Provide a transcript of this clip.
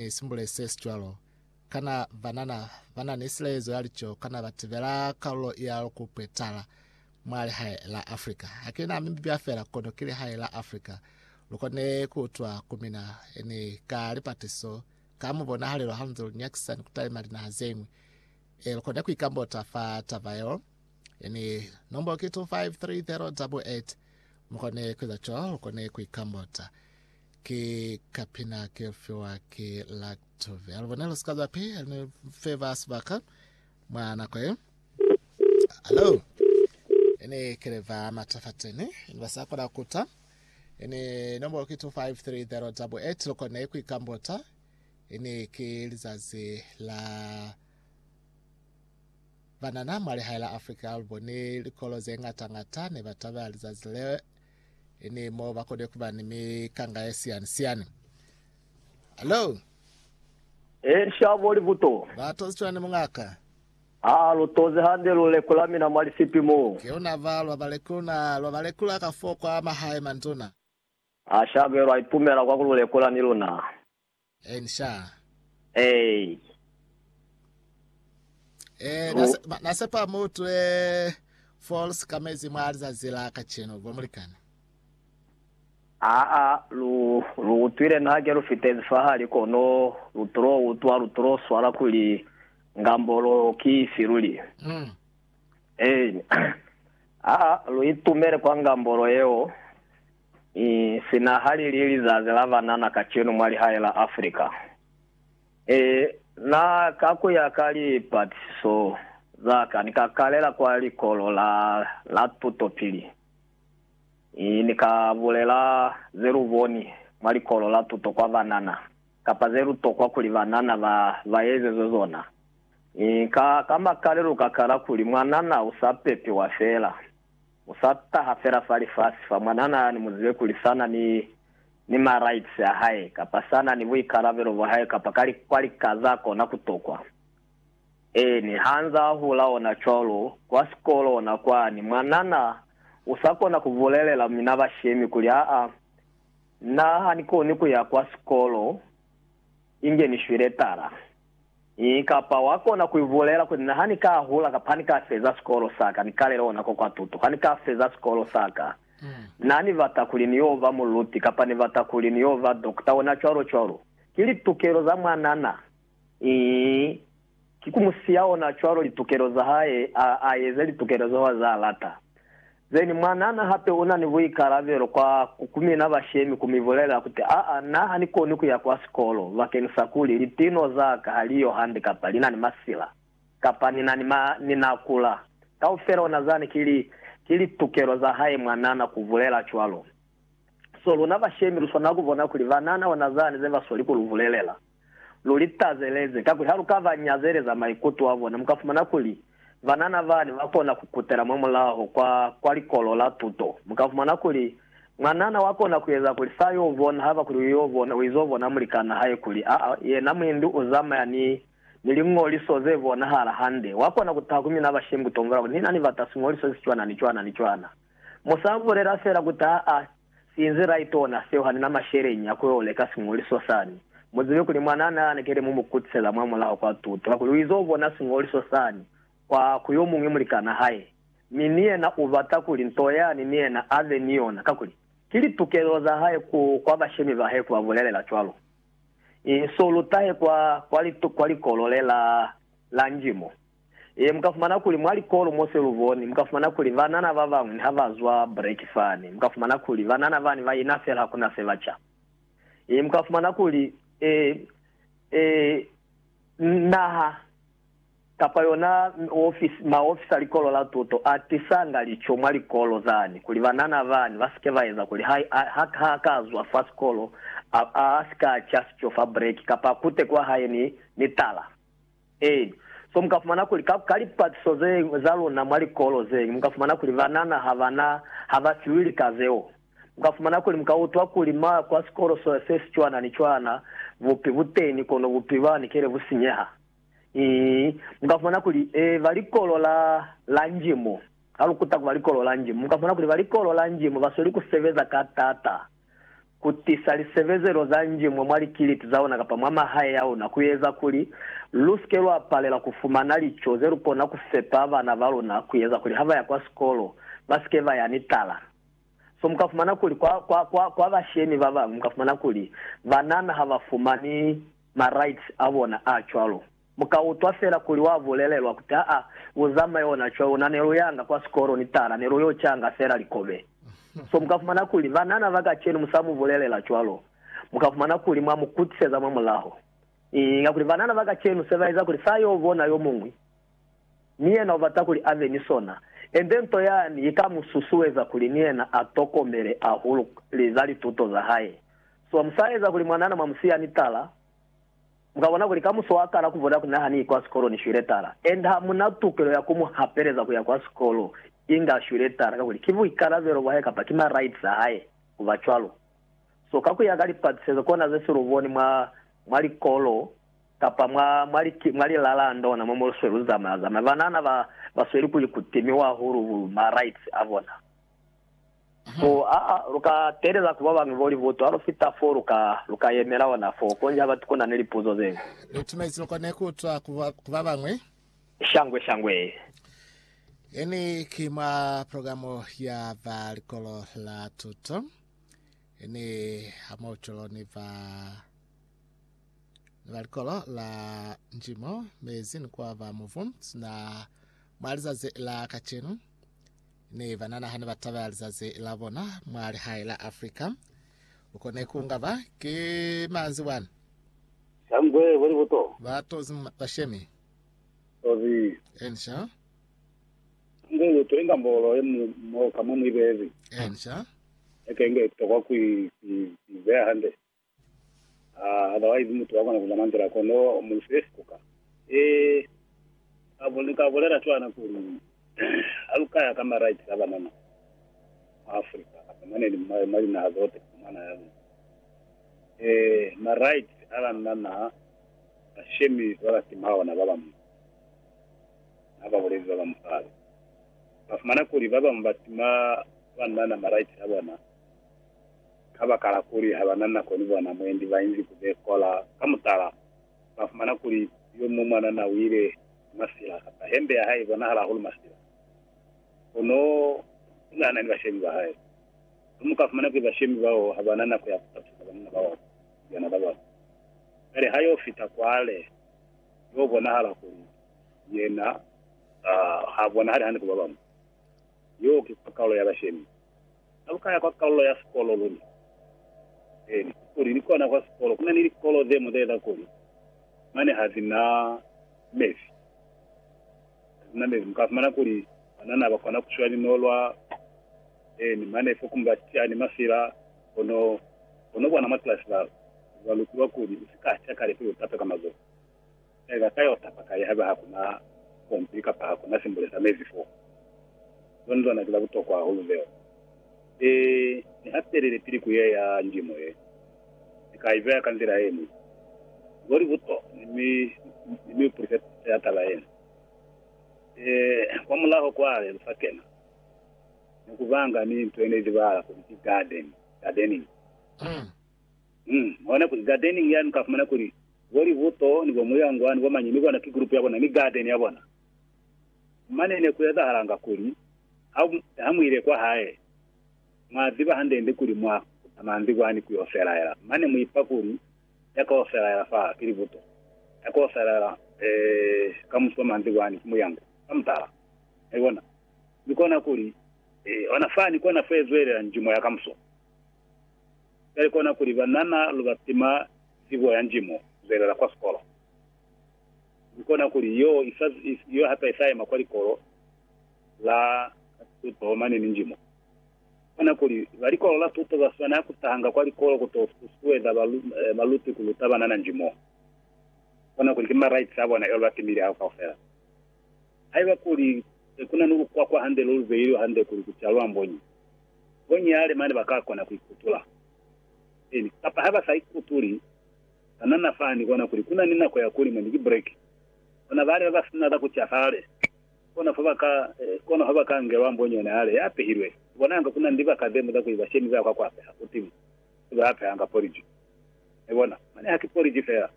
ni simbule se si cwalo? Kana banana ba na ni silezo ya lico kana ba tibela kalulo ya ku kwetala mwa lihae la Afrika? Ha ki na Mibibia fela, kono ki lihae la Afrika. Lu kone ku utwa ku mina ni ka lipatiso ka mubonahalelo hanze lu nyakisa ni ku talima linaha ze ñwi. E, lu kone ku ikambota fa taba yeo. Ni nombolo ki 25308. Mu kone ku eza cwalo, lu kone ku ikambota. Ki kapina ke fiwa ki Lactovir. Lu bone lu si ka za pi ni fe ba sibaka mwa nako ye. Hello. Ini kele ba matafateni. Ini ba sa kona kuta. Ini nombolo ki 253088 lu kone ku ikambota. Ini ki lizazi la banana mwa lihae la Afrika lu bone likolo ze ngata ngata ne ba taba lizazi le Ini mo ba kone kuba ni mikanga ye siani siani. Hallo? E, nshabo libuto. Ba tozi cwani mungaka? Ha lu tozi hande luleko la mina mwa lisipi mo. Ki una ba lwa balekulu na lwa balekula ka foo kwa mahae, manduna. Ha shabelo a ipumela kwa ku luleko la ni luna. En sha. Ei. Eh, Lu- nase- ma- nasepa mutu eh, false kamezi mwa lizazi la kacenu bo mulikani. Aa, lu, lu utwile na hake lu fitezi fahali kono lu tulo utwa, lu tulo swala kuli ngambolo ki ifi luli. Mm. Ei. Aa, lu itumele kwa ngambolo yeo. Sina ha li li lizazi la banana kacenu mwa lihae la Africa, na, ka ku ya ka lipatisiso za ka, ni ka kalela kwa likolo la, la tutopili. Ni ka bulela ze lu boni mwa likolo la tuto kwa banana, kapa ze lu tokwa kuli banana ba, ba ezezwe zona. Ka, ka makale lu ka kala kuli, Mwanana u sa pepiwa fela. U sa taha fela fa lifasi fa mwanana yani muzibe kuli sa na ni, ni ma rights a hae, kapa sa na ni buikalabelo bwa hae, kapa ka li, kwa lika za kona ku tokwa. Eeni, ha nza a hula ona cwalo, kwa sikolo ona kwani, mwanana u sa kona ku bulelela mina bashemi kuli, Aa, na ha ni koni ku ya kwa sikolo inge ni shwile tala. Ii, Kapa wa kona ku ibulela kuli, Na ha ni ka hula kapa ha ni ka feza sikolo sa ka, ni kale lona ko kwa tuto. Ha ni ka feza sikolo sa ka, na ni bata kuli ni yo ba muluti kapa ni bata kuli ni yo ba dokota, ona cwalo cwalo. Ki litukelo za mwanana. Ii, Ki ku mu siya ona cwalo litukelo za hae, a, a eze litukelo zeo a za lata. Zeni, mwanana hape una ni buikalabelo kwa kukumina bashemi kumibulelela kuti, Aa, na ha ni koni kuya kwa sikolo bakeni sa kuli litino zaka ha li yo hande kapa li na ni masila, kapa ni na ni ma, ni na kula. Kaufela ona zani ki li, ki litukelo za hae mwanana kubulela cwalo. So luna bashemi luswanela kubona kuli banana ona zani ze basweli kulubulelela. Lu li tazeleze, kakuli ha lu ka ba nyazeleza maikuto a bona, mu ka fumana kuli banana bani ba kona ku kutela mwa mulaho kwa, kwa likolo la tuto. Mu ka fumana kuli mwanana wa kona ku eza kuli sa yo bona, haba kuli u yo bona, u izo bona mulikan'a hae kuli a, a, yena muindu u zamaya ni, ni liñoliso ze bonahala hande. Wa kona ku taha ku mina bashemi ku tombola kuli, Ni na ni bata siñoliso se si cwana, ni cwana, ni cwana. Mu sa bulela fela ku taha a, Sinzi Raitona Seo hanina masheleñi a ku yo leka siñoliso sani, mu zibe kuli mwanaa ne a lekele mu mu kutisela mwa mulaho kwa tuto, kakuli u izo bona siñoliso sani kwa ku yo muñwi mulikanaa hae, mi ni yena u bata kuli nto yani ni yena a be ni yona, kakuli ki litukelo za hae ku kwa bashemi ba hae ku ba bulelela cwalo. Inso lu tahe kwa, kwa, kwa likolo le la, la njimo. Ee, mu ka fumana kuli mwa likolo mo se lu boni, mu ka fumana kuli banana ba bañwi ni ha ba zwa breki fani, mu ka fumana kuli banana bani ba ina fela, ha ku na se ba ca. Ee, mu ka fumana kuli, ee, ee, naha, kapa yona ofisi, maofisi a likolo la tuto a tisanga lico mwa likolo zani, kuli banana bani ba si ke ba eza kuli ha, ha, ha a ka zwa fa sikolo, a, a si ka ca sico fa breki, kapa a kute kwa hae ni, ni tala. Ee. So mu ka fumana kuli ka, ka lipatiso ze, za luna mwa likolo zeñwi, mu ka fumana kuli banana ha ba na, ha ba fiwi lika zeo. Mu ka fumana kuli mu ka utwa kuli ma ya kwa sikolo so, se si cwana ni cwana, bupi bu teni, kono bupi ba ni kele bu sinyeha. Ii, mu ka fumana kuli, ee, ba likolo la, la Njimu. Ha lu kuta ku ba likolo la Njimu, mu ka fumana kuli ba likolo la Njimu ba sweli ku sebeza ka tata. ku tisa lisebezelo za njimwe mwa likiliti za ona kapa mwa mahae a ona ku eza kuli lu si ke lwa palela ku fumana lico ze lu kona ku fepa bana ba luna ku eza kuli ha ba ya kwa sikolo ba si ke ba ya ni tala. So mu ka fumana kuli kwa, kwa, kwa, kwa bashemi ba bañwi mu ka fumana kuli banana ha ba fumani ma rights a bona a cwalo. Mu ka utwa fela kuli wa bulelelwa ku ta'a u zamai ona cwalo luna ne lu yanga kwa sikolo ni taala ne lu yo canga fela likobe. So mu ka fumana kuli banana ba kacenu mu sa mu bulelela cwalo, mu ka fumana kuli mwa mu kutiseza mwa mulaho. Inga kuli banana ba kacenu se ba eza kuli fa yo bona yo muñwi, ni yena u bata kuli a be ni sona, ende nto yani i ka mu susueza kuli ni yena a tokomele ahulu za lituto za hae. So mu sa eza kuli mwanana mwa mu siya ni taala. Mu ka bona kuli kamuso wa kala ku vota kuli na ha ni yi kwa sikolo ni shwile tala. Enda ha mu na tukelo ya ku mu hapeleza ku ya kwa sikolo inge a shwile tala, kakuli ki buikalabelo bwa hae kapa ki ma rights a hae ku ba cwalo. So ka ku ya ka lipatisezo kona ze si lu boni mwa, mwa likolo kapa mwa, mwa li, mwa lilala ha ndona mo mo lu swe lu zamaya zamaya, banana ba, ba sweli ku li kutimiwa hahulu bu ma rights a bona. Fo'a, lu ka telela ku babañwi bo li butu ha lu fita fo lu ka, lu ka yemela ona fo. Konji ha batu ku na ni lipuzo ze ñwi. Lu timaizi lu kone ku utwa ku, ku babañwi. Shangwe, shangwe. Ye ni ki mwa programo ya ba likolo la tuto. Ye ni ha mwa bucwelo ni ba, ni ba likolo la njimo, mezi ni kwa ba mubu, sina mwa lizazi la kacenu. Ne ba nana hane ba taba ya lizazi la bona mwa lihae la Africa. Lu kone ku nga ba ki manzi bwani. Tambwe boli buto. Ba tozi bashemi. Tozi. Ensha. Tambwe lu to inga mbolo ye mu mo ka mwa mwibeezi. Ensha. Eke nge tokwa ku i beya hande. Ah, otherwise mutu wa kona ku mamangela kono mu fe sikuka. Eh, ka bole, ka bolela cwana kuli ha lu kaya ka ma rights a banana mu Africa, kapa mane ni mwa mwa linaha zote mwana ya luna. Eh, ma rights a banana ba shemi ba ba tima ona ba bamu. Ha ba bolezi ba ba musali. Ba fumana kuli ba bamu ba tima banana ma rights a bona. Kabakala kuli habana nako ni bona mwendi bainzi ku bekola, ka mutala, bafumana kuli yo muñwi mwanana uile ni masila, kapa hembe ya hae ibonahala hahulu masila. Kono unahana ni bashemi ba hae. Ha muka fumana kuli bashemi bao habana nako ya kutatusa banna ba bona ni lyana la bona, kale ha yo fita kwale, yo bonahala kuli yena ha bonahali hande ku babañwi. Yo ki kwakaulo ya bashemi. Na lu ka ya kwa kalulo ya sikolo luna? Eeni, kuli ni kona kwa sikolo. Ku na ni likolo ze muteeta kuli mane ha zi na mebi. Ha zi na mebi. Mu ka fumana kuli banana ba kona ku shwa linolwa, eeni, mane fo kumba tia ni mafila, kono, kono bona mwa kilasi ba, ba lutilwa kuli, U si ka tia kale pili u tape ka mazoho. Ee, ba ka yo tapa kai haiba ha ku na pompi kapa ha ku na simbule sa mezi fo? Loni lona ki la butokwa hahulu leo. Ni, ni hapelile pili ku ye ya ndimo ye. Ni ka i beya ka nzila ye ñwi. Ni boli buto, mi, mi, mi ni upulise pito ya taba yena. Ee, kwamulaho kwale lu sa kena, ni ku banga ni nto ye ne izibahala kuli ki garden, gardening. Hm. Hona kuli gardening yani ka fumana kuli bo Libuto ni bo Muyangwa ni bo mañi ni bona ki group ya bona ni garden ya bona. Mane ne ku ezahalanga kuli ha, ha mu ile kwa hae, mwa ziba hande-nde kuli mwa kuta manzi kwani ku yo felaela, mane mu ipa kuli ya ka yo felaela fa ki Libuto, ya ka yo felaela, eh, ka musi wa manzi kwani ki Muyangwa, ka mutala. Mwai bona? Mi kona kuli, eh, hona fani kona fo ye zwelela njimo ya kamuso. Cwale kona kuli banana lu ba pima zibo ya nji mu zwelela kwa sikolo. Mi kona kuli yo isa, yo hape isa yema kwa likolo la tuto mane ni nji mo. Kona kuli ba likolo la tuto ba swanela ku tahanga kwa likolo ku to susueza ba, eh, baluti ku luta banana nji mo. Kona kuli ki ma rights a bona, cwale ba timile hao kaufela. Haiba kuli se kuna ni lukwakwa hande lo lu beilwe hande kuli ku calwa mbonyi, mbonyi ya lema ne ba ka kona ku i kutula. Eeni, kapa ha ba sa i kutuli, banana fa ni bona kuli kuna ni nako ya ku lima ni ki breki. Bona bali ba ba sina za ku ca hale, kono fa ba ka, kono ha ba ka ngelwa mbonyi yona hale ya pehilwe, ku bonanga kuna ni libaka ze ñwi za ku iba shemi za kwa ku apeha ku timu, se ba apehanga poliji. Mwai bona? Mane ha ki poliji fela.